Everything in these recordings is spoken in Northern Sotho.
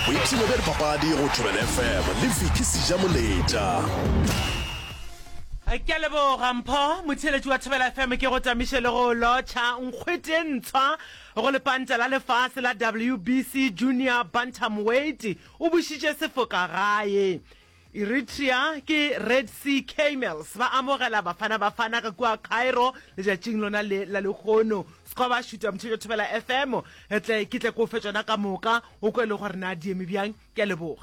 boipshino bja dipapadi go thobela fm le vicky seja moletša ke a leboga mpho motheeletši wa thobela fm ke go tamiše le go lotšha nkgwete ntshwa go lepanta la lefase la wbc junior bantamweight o bušitše sefoka gae Eritrea ke Red Sea Camels ba amogela Bafana Bafana ka kua Cairo letšatšing lona le la lehono. Skoba šuta Mthetšo Thobela FM re tle ke tle ko fe tšona ka moka o kwe le gore na di eme bjang. Ke a leboga.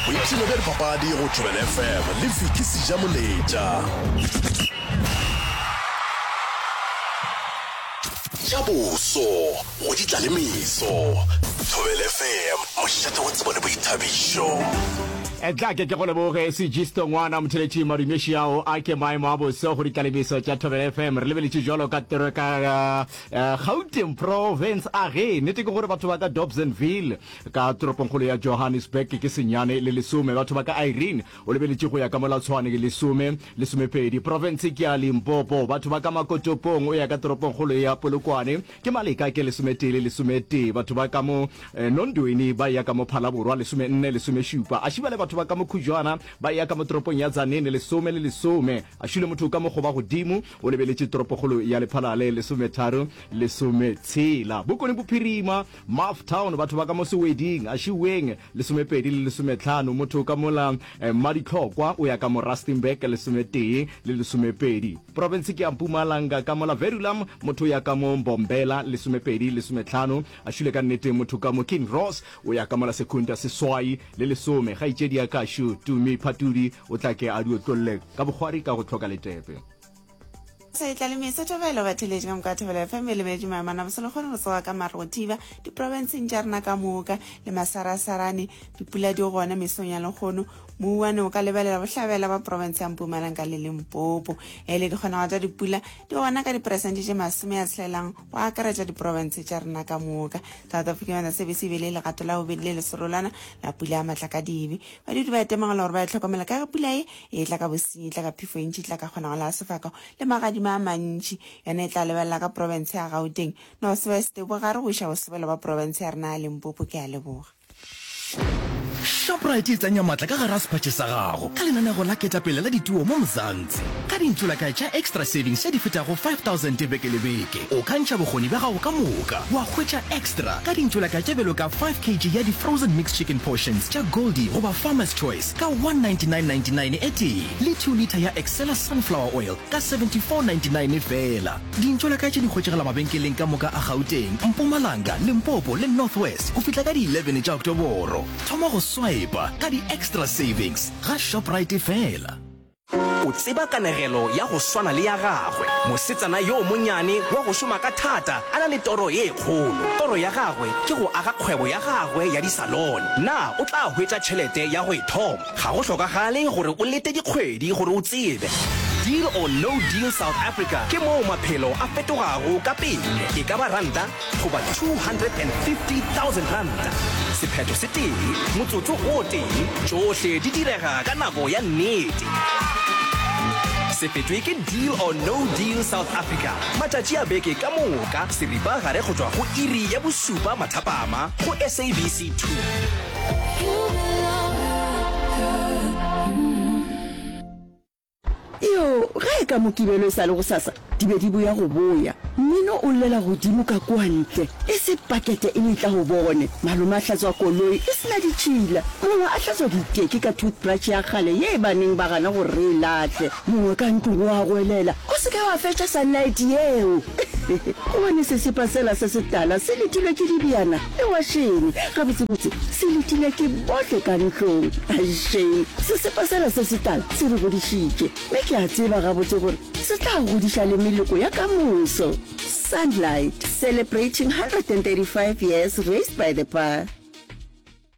Boipshino bja dipapadi go Thobela FM le Vicky Sijamoletša. Tša boso. Go di tla le meso. Thobel FM, mošate wa tsebo le boithabišo. Etla ke ke go leboge sejisto ngwana motheletši madumeši ao a ke maemo a boso go ditlalebiso tša thobele fm re lebeletše jalo ka tero ka uh, gauteng province a ge nete ke gore batho ba ka dobsonville ka toropongkgolo ya johannesburg ke senyane le lesome batho ba ka irene o lebeletše go ya ka molatshwane ke lesome lesomepedi province ke ya limpopo batho ba ka makotopong o ya ka toropongkgolo ya polokwane Ke maleka ke lesometee le lesometee, batho ba ka mo eh, Nondweni ba eya ka mo Phalaborwa, lesomenne, lesomešupa. A šiba le batho ba ka mo Khujwana ba eya ka mo toropong ya Tzaneen, lesome le lesome. A šule motho ka mo Gobagodimo, o lebeletše toropokgolo ya Lephalale, lesometharo, lesometshela. Bokone Bophirima, Maff Town, batho ba ka mo Seweding, a šiweng, Lesomepedi le lesometlhano, motho ka mola eh, Mmaditlhokwa o ya ka mo Rustenburg, lesometee le lesomepedi. Profense ke ya Mpumalanga ka mola Verulam, motho o ya ka mo Mbombela, lesomepedi lesometlhano. A šule ka nnete motho ka mo Kinross o ya ka mola Secunda, seswai le lesome. Kgaetšedi ya Kašu, Tumi Phatudi o tla ke a di otlolle ka bokgwari ka go tlhoka letepe. Seetla le mesa thobelo batheletši ka moka thobelo fm e lebeletše maemana bosele kgone go tsoga ka mare go thiba diprofenseng tša rena ka moka le masarasarane dipula di gona mesong ya lekgono mouwane o ka lebelela bohlabela ba profense ya mpumalanga le lempopo e le dikgonago tša dipula di gona ka diperesente tše masome ya tshelelang go akaretša diprofense tša rena ka moka south africa yona sebe se bele legato la bobedi le leserolwana la pula ya matlakadibe badudi ba etemagela gore ba e tlhokomela ka ge pula e E tla ka bosenyi, e tla ka phefo e ntši, e tla ka kgonagalo ya sefako le magadima a mantši. Yona e tla lebelela ka profense ya Gauteng, Northwest, Bogare go iša Bosebele bwa profense ya rena ya Limpopo. Ke a leboga. Shoprite e tsenya matla ka gare a sephatše sa gago ka lenaneo la ketapele la dituo mo Mzansi. Ka dintsulakae tša Extra Savings tše di fetago 5000 beke le beke, o ka ntšha bokgoni bja gago ka moka wa hwetša extra ka dintsulakae tše bjalo ka 5 kg ya di-frozen mixed chicken portions tša Goldie goba Farmer's Choice, ka 199.99 etee le 2 litha ya Excella Sunflower Oil ka 74.99 feela. Dintšola ka tše di hwetšagala mabenkeleng ka moka a Gauteng, Mpumalanga, Limpopo le North West go fihla ka di 11 tša Oktoboro. Thoma go swiper ka di-extra savings ga Shoprite feela. O tseba kanegelo ya go swana le ya gagwe, mosetsana yo monnyane wa go šoma ka thata a na le toro ye kgolo. Toro ya gagwe ke go aga kgwebo ya gagwe ya disalone. Na o tla hwetša tšhelete ya go e thoma? Ga go hlokagale gore o lete dikgwedi gore o tsebe. Deal or No Deal South Africa ke moo maphelo a fetogago ka pele. E ka ba ranta goba 250,000 ranta, sephetho se tee, motsotso o tee, tšohle di direga ka nako ya nnete. Se fetwe ke Deal or No Deal South Africa, matšatši a beke ka moka seripagare go tšwa go iri ya bošupa mathapama go SABC 2. Iyo, ge e ka Mokibelo e sa le gosasa, di be di boya go boya. Mmino o llela godimo ka kua ntle, e se pakete e le itla go bone. Malome a hlatswa koloi e se na ditšhila. Mongwe a hlatswa diteki ka toothbrush ya kgale ye e baneng ba gana gore re e lahle. Mongwe ka ntlong o a goelela, O se ke wa fetša sunlight yeo! Gobane sesepa sela se setala se letilwe ke dibjana. Ewa Shane, gabotsebotse se letile ke bohle ka ntlong. Ai Shane, sesepa sela se setala se re godišitše, me ke a tseba gabotse gore se tla godiša le meloko ya ka moso. Sunlight, celebrating 135 years raised by the pa.